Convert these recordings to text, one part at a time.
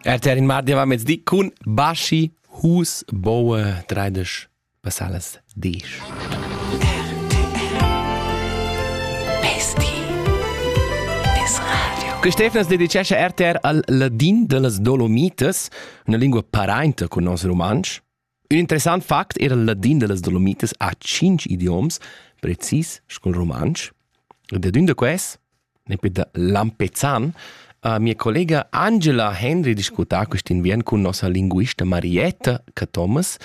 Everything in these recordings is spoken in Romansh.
RTR in mardi va mezdi cun Baschi Hus Boe 30 passalas 10. Quest'efnas dedicescha RTR al ladin dellas Dolomites, una lingua parainta con nos rumantsch. Ün interessant fact eira il ladin da las Dolomitas a tschinch idioms, precis sco'l rumantsch. Ed ad ün da quels, nempe da Lampezzan, ha mia collega Angela Hendry discutà quist'inviern cun nossa linguista Marietta Cathomas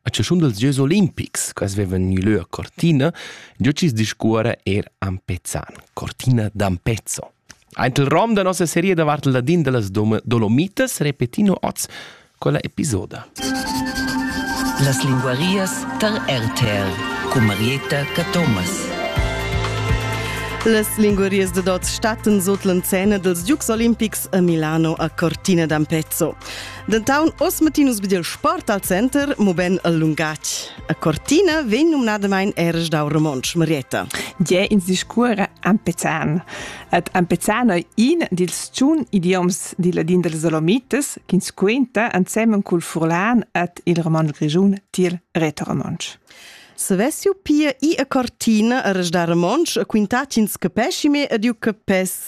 a chaschun dels Gieus olimpics. Quels vevan gnü lö a Cortina, giò chi's discuorra eir am Pezzan, Cortina d'Ampezzo. Aint il rom da nossa seria davart il ladin da las Dolomitas repetino oz quella episoda. Las linguarias tar RTR cun Marietta Cathomas. Las linguarias de Dots stattan sot l'encena dels Giugs Olimpics a Milano a Cortina d'Ampezzo. Dentaun oss matinus bidel sport al center, moben al lungatg. A Cortina vegn numnadamain eras dau romontsch Marietta. Gie ins discuora ampezan. Ed ampezan ei in dils tschun idioms dil ladin dals Dolomites ch'ins quenta ensemen cul furlan ed il roman grischun tiel retoromontsch. Savess ju pia ir a Cortina eras da romontsch e quintar ch'ins capesci me ed ju capess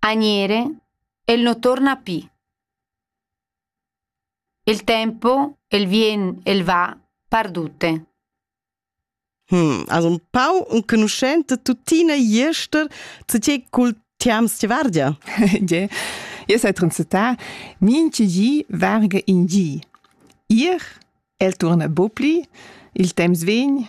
Agnere, el no torna pü. Il tempo, el vien, el va, perdute. Hm, as un pau enconuschent tuttina jester zu te cul tiams ti vardia. Gie, io sai transetà minchi gi varga in gi. Ir, el turna bo pli, il temps vegn.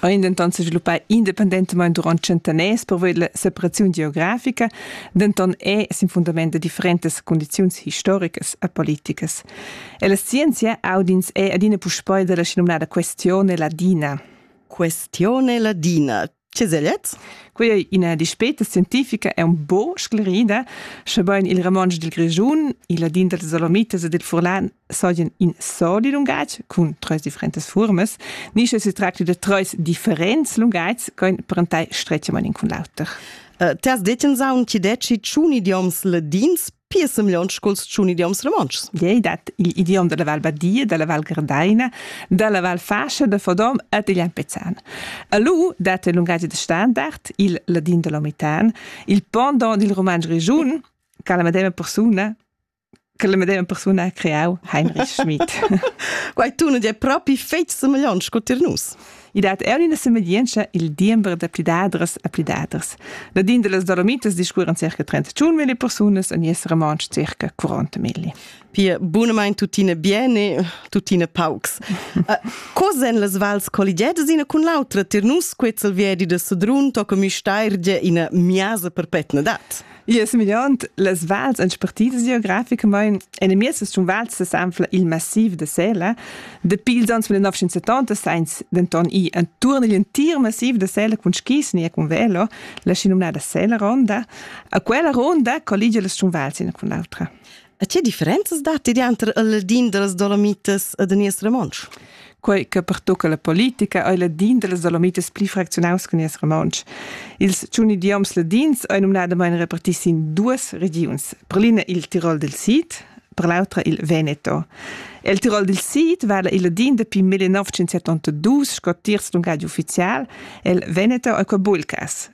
ein denton sviluppai independentamain durant tschentaners pervoi la separaziun geografica, denton è sin fundament da differentas condiziuns historicas e politicas. E la scienzia audins è adina puspei dalla schinomnada questione ladina. Questione ladina. Che segliez? Quella è ina dispeta scientifica è un po sclerida, sche bain il romansch dil Grischun, il ladin dals Dolomites e del Furlan seien in soli lungatg cun tres differentes formas, ni sche si tracti de treis differents lungags che parentai stretgamente cun l'auter. Uh, Ters deten saun ti deci ciun idioms ladins piessem leon sculs ciun idioms romontschs. Ei dat il idiom della Val Badia, della Val Gardaina, della Val Fascia, da Fodom et il Lampezzan. Alu dat il lungaggio de standard, il ladin dell'omitan, il pendant dil roman grigiun, che la medema persona che la medema persuna ha creau Heinrich Schmidt. Quei tun è propi fetg semegliont sco tir nus. I dat er una semeglienza il diember da pledadras a pledaders. Ladin de las Dolomitas discurran circa 31.000 personas en es romansch circa 40.000. Pia, bunamain tuttina bene, tuttina paucs. uh, cosa en las vals colligedas ina cun l'autra tir nus quezzal viedi de Sedrun toca mi steirge ina miasa perpetna dat? Io es migliond las vals expertisas geograficamaing enamiez sun vals sesanfla il massiv da Sela. Dapi ils ans 1970 sainz denton ir intuorn igl entir massiv da Sela cun skis ni cun velo, la schinomnada Sela ronda. A quella ronda colligia las sun vals ina cun l'autra. E che differenzas datti dianter il ladin da las Dolomitas e da nies romontsch? Quei che pertucca la politica ei ladin dallas Dolomitas pli fracziunaus che nies romontsch. Ils tschun idioms ladins ein numnadamein reparti sin duas regiuns, per l'ina il Tirol del Sid, per l'autra il Veneto. El Tirol del Sid vala il ladin dapi 1972 sco tiers lungatg ufficial, el Veneto ei quei bulcas.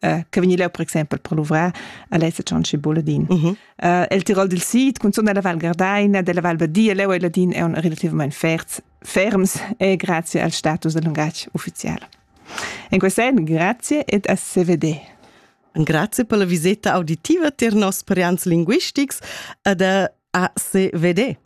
äh, che vegni leu per exempel per luvrar a lessa tschanci buladin. Mm -hmm. uh, el Tirol dil Sid, cunzun della Val Gardaina, della Val Badia, leu e ladin è un relativamente ferms, ferms e grazie al status del lungatg ufficiale. In questo sen, grazie ed a CVD. Grazie per la visita auditiva ter nos sperians linguistics ad a CVD.